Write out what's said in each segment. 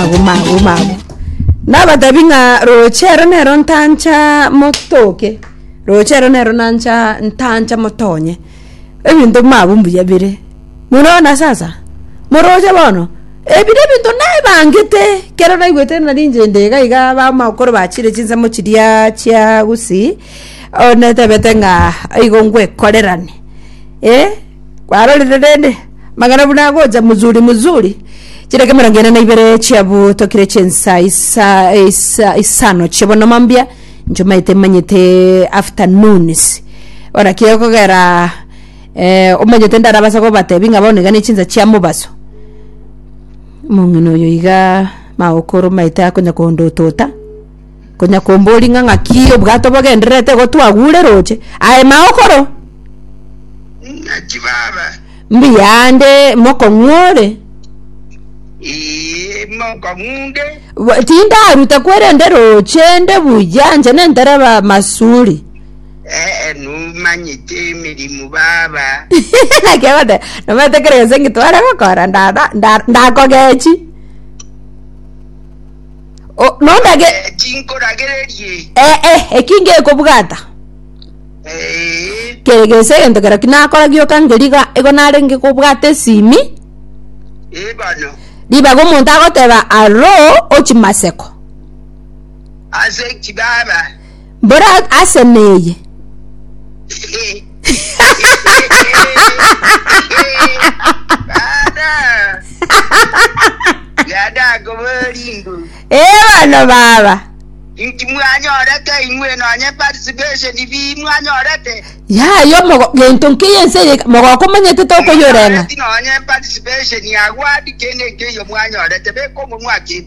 maguma aguma agwo nabatabi ng'a roche ero nero ntancha motoke roche ero nero nancha ntancha motonye ebinto bimabwo mbuya bire murona sasa moroche bono ebire ebinto naebangete kero naigwete nari inche nde iga iga bamakoro bachire chinsemo chiria chia gusii oo netebete ng'a igo ngwekorerane eh. Kwarorire rende, magana buna agocha muzuri muzuri, chiraka emerongo ene na ibere chiabotokire chinsa isa isa isano chi'obonoma mbia, nchomaete manyete afternoons. Bono ki okogera eh, omanyete ndarabasa kobatebi ng'a bono iga ne chinsa chia mobaso. Omong'ina oyo iga magokorwa maete akonya kondotota. Konya kombori ng'a ng'aki obwato bogendererete igo twagure roche, aye mao okoro. Ng'aki baba? Mbuya ande mokong'u ore. Ee, mokong'unde. Tindaruta kwerende roche nde buya nche nentereba masuri. Ee, numanyete emirimo baba. Nakebate, nomanyete kere gese ngitware gokora ndada nda- ndakogechi. O- nondage Eh, tinkoragererie eh, eh, eki ngekobwata Eh, kere gese egento kero kinakora gioka ngeriga igo narenge kobwata esimi eh, bono ribaga omonto agoteba aro ochimaseko ase chibaba Mbora ase neye. Dada. Dada koborindu. Ee bono baba. Inki mwanyorete inwe nonye participation bi mwanyorete? Yayo mogo gento nkiyo ense eye mogoko manyete tokoyorenga. Nonye participation ya wadi kende nkiyo mwanyorete bekomo mwaki.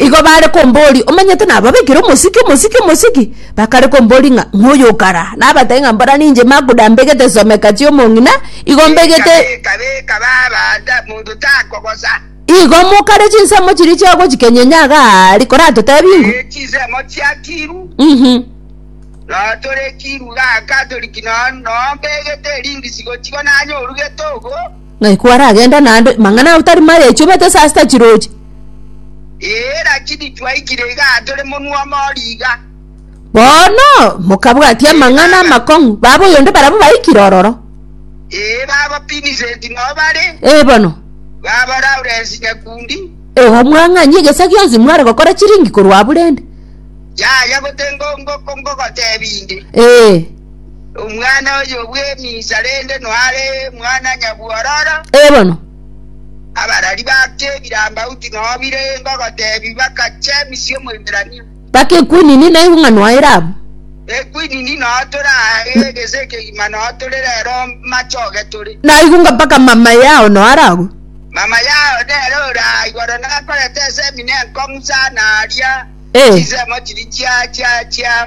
Igo bare komboria, Omanyete nababekire omosiki, omosiki, omosiki? Bakare komboria ng'a, Noyo okara? Nabatebia ng'a, Mbora ninche Maguda mbegete esomeka chi'omong'ina, igo mbegete. Igo mokare chinsemo chiria chiagochikenyenye iga aria, koratotebia ingo. Ng'ai kwaragenda naende? Mang'ana ao tari maya echubete ase asita chiroche? Ee, lakini twaikire iga tore monwe omori iga. Bono mokabwatia Ee, amang'ana baba. amakong'u baba oyonde barabwo baikire ororo. Ee, baba Vincent nao bare, Ee bono. baba Lawrence Nyakundi, Igo mwang'anyia egesa gionsi mware gokora chiringi korwa aburende. yaya gotengo ngo- ngo- ngogotebi inde. Ee. Omwana oyo bw'eminsa rende noare mwana nyabwororo. Ee bono. Abarari bake ebirambauti nobire engo gotebi bakache Misia Omoiberania. Mpaka ekwinini na eng'u ng'a noaye Rabu. Ekwinini noo toraye gese ekegima noo tore rero machoge tore. Naigu ng'a mpaka mamaye ao noo aragwe. Mamaye ao nere ore aa igoro nakorete ensemi nenkong'u sana aria Ee. chinsemo chiria chia chia chia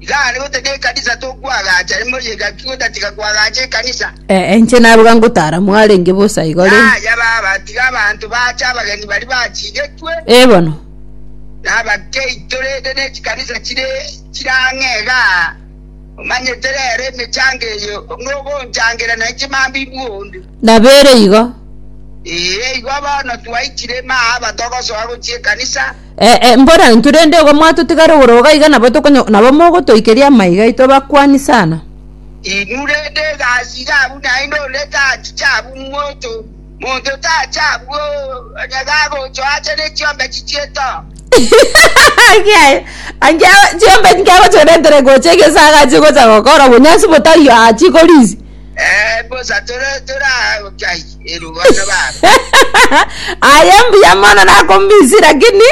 Iga are goteta ekanisa tokwagacha emori egaki gotatiga kwagacha ekanisa. Eh, inche naruga ngotara mwarenge bosa igo rende. Yaya baba, tiga abanto baache abageni baria bachigetwe, Eh, bono. na abakeito rende ne chikanisa chire chire ang'e iga. Omanyete rero emechango eye, nogonchangera na inche mambibwe onde. Nabere igo. Ee, igo bono twaichire maa aba togosoa gochia ekanisa. Ee, mbora intwe rende igo mwatotigara ogoroga iga nabo tokonyo nabo mogotoikeria amaiga aito abakwani sana. Inwe rende egasiga abwo naende onde tachiche abwo monto, monto tache abwo onye gagocha ache ne chiombe chichieto. Kiaye, ange chiombe nkiagochoretere gocha egesa agache gocha gokora obonyansi botari achi korisi. Eh, bosa tore toragochai. Aye mbuya mono nakombisi lakini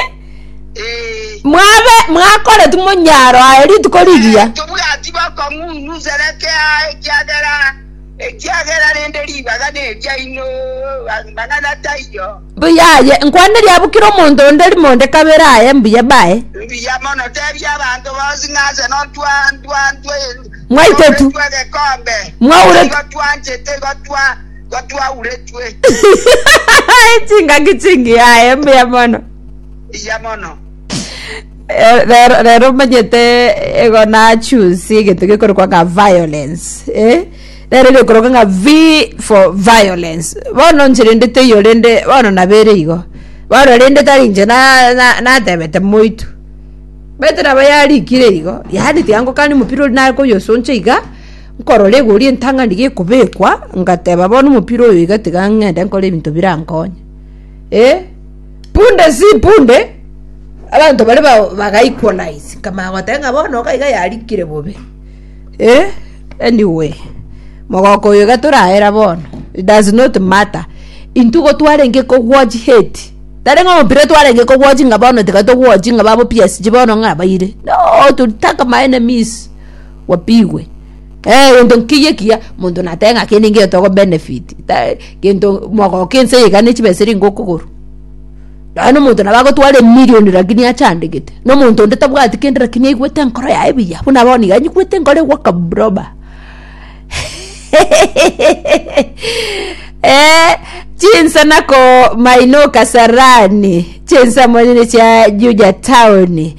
mwabe mwakoretu monyaro aye rituko rigiya tobwati bakong'unu sereke aye ekiagera ekiagera rende ribaga neriaino mang'ana taiyo mbuya aye nkwaneri abukire omonto onde rimonde kabere aye mbuya bae mbuya mono tebia abanto bonsi ng'ase nontwa ntwa ntwa mwaitetu mwaure twanchete gotwa gotwauretwe chingaki chingiyaye mbuya mono iya mono Eh, rero rero omanyete ego nachusi egento gekorokwa ng'a violence eh? rero gekorokwa ng'a v for violence bono ncherendete iyo rende bono nabere igo bono rende tari inche na- na- natebete moito bete nabo yarikire igo yaani tiangokani omopira oria nakoyosoncha iga Nkorora egori entang'ani gekobekwa, ngateba, Bono omopira oyo iga tiga ng'ende nkore ebinto birankonye. Eh, punde si punde, abanto baria ba- baga equalize, nkamanya goteba ng'a bono iga iga yarikire bobe. Eh, anyway, mogoko oyo iga torayera bono, it does not matter, intwe igo twarenge kowatch hate, tarenge omopira twarenge kowatch ng'a bono tiga towatchi ng'a babo PSG bono ng'a baire, no, to attack my enemies. Wapigwe. Eeh egento nkeyie ekiya, monto natebe ng'a kende nkeiyo togo benefit, ta gento mogoka ense iga ne chibesa ere ingo okogorwa. Nonya na omonto nabo agotwara emillion lakini achandegete, na omonto onde tabwati kende lakini aigwete enkoro yaye buya, buna bono iga nyigwete enkoro egoaka broba eeh chinsa nako mainoo kasarani, chinsa monyene chia Juja town.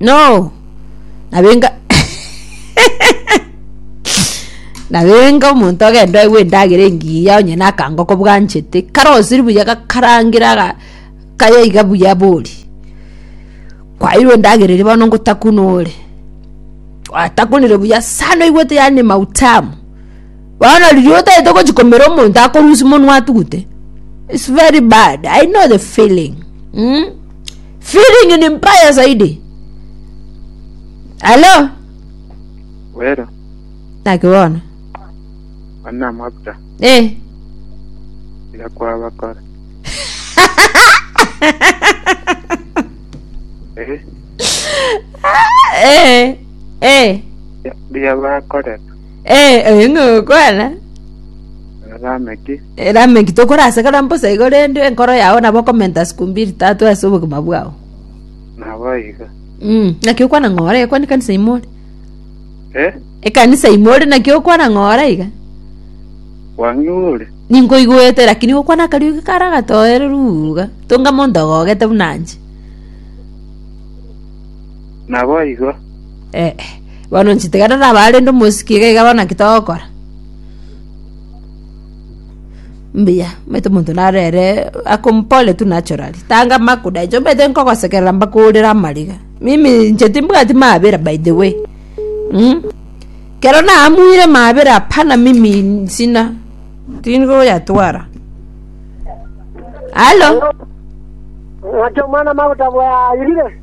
No. Nabenga Nabenga omonto agende oegwe endagera engiya onye na akango kobwanchete kare osiri buya gakarangera ga kaya iga buya bori. Kwairwa endagera eria bono ngotakunore. Gwatakunire buya sana oigwete yani mautamu. Bono riria otaete gochia komera omonto akorusia monwa atugute it's very bad I know the feeling mm? feeling ni mbaya zaidi alo Wero, naki bono ona amabuta, eh. iga kwabakora. Eh, eh. eh. ria- ria bakorera. Eh, oyo ng'a ogokwana. Rameki, Erameki tokorasakara mbosa igo rende enkoro yao nabo okomenta siku mbiri tatu ase obogima bwao. nabo iga. Mm, naki okwana ng'ora iga kwani kanisa ime ore. Eh, Ekanisa ime ore naki okwana ng'ora iga. kwang'igure? Ninkoigwete lakini gokwana akario iga kara gatoereru iga. Tonga monto ogogete buna inche. Naboigo. Eh, eh, bono nchitigana naba arende omosiki iga iga bono naki togokora? Mbuya, omanyete omonto nare ere akom pole tu naturally. Tanga makuda inche omanyete nkogosekerera mbakoorere amariga. Mimi inche timbwati mabera by the way. Mm? Kero naamuire mabera hapana mimi sina. Tindi koyatwara. Halo? Ng'aki omwana maguta bwayirire?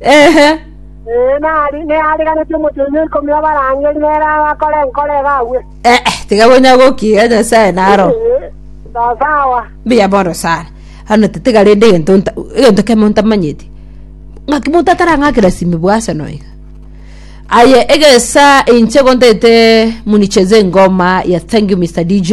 Ee, nari neaariganeti omochenu o ikomi obarangeri nere agakora enkoro ebe agwe. Eh, eh, tiga konya gokiira Nyasae naro. Ee, sawa sawa. Mbuya bono sana. Ano tetiga rende egento nta- egento kemo ntamanyeti. Ng'aki monto atarang'akera simi bwa Arsenal iga. Aye egesa inche gontete municheze ngoma ya thank you Mr. DJ.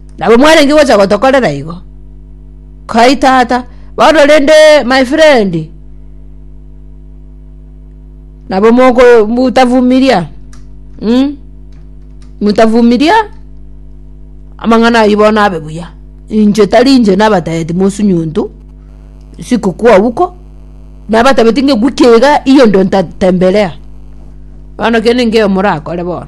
Nabo mwarenge gocha gotokorera igo. Kai tata, bono rende my friend. Nabo moko mutavumiria. Mm? Mutavumiria amang'ana ayio bono abe buya. Inche tari inche nabatebeti mosunyuntu sikukua huko. Nabatabeti ng'e wiki iga hiyo ndio nitatembelea. Bono kende nkeiyo morakore bono.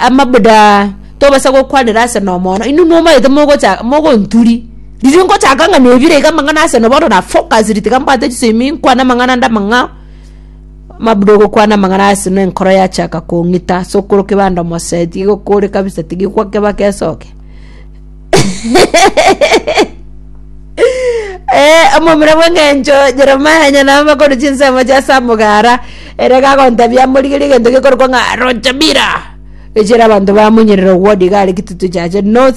amabuda tobasa gokwanera ase nomono, inwe momaete mogocha mogonturi, riria ngochaka ng'a nebire iga amang'ana ase no bono na focused tiga mbwate chisemi nkwane amang'ana ande amang'ao, amabuda ogokwana amang'ana ase na enkoro yachaka kong'ita ase okoro kebanda omosee tiga okore kabisa tigikwa keba kesoke. Eh, omomura bw'eng'encho Jeremia onye namakoru chinsemo chia Samugara, ere gagontabia amorigerie egento gekorokwa ng'a Rochabira, echire abanto bamonyerera ogwa Digari, Kitutu Chache, North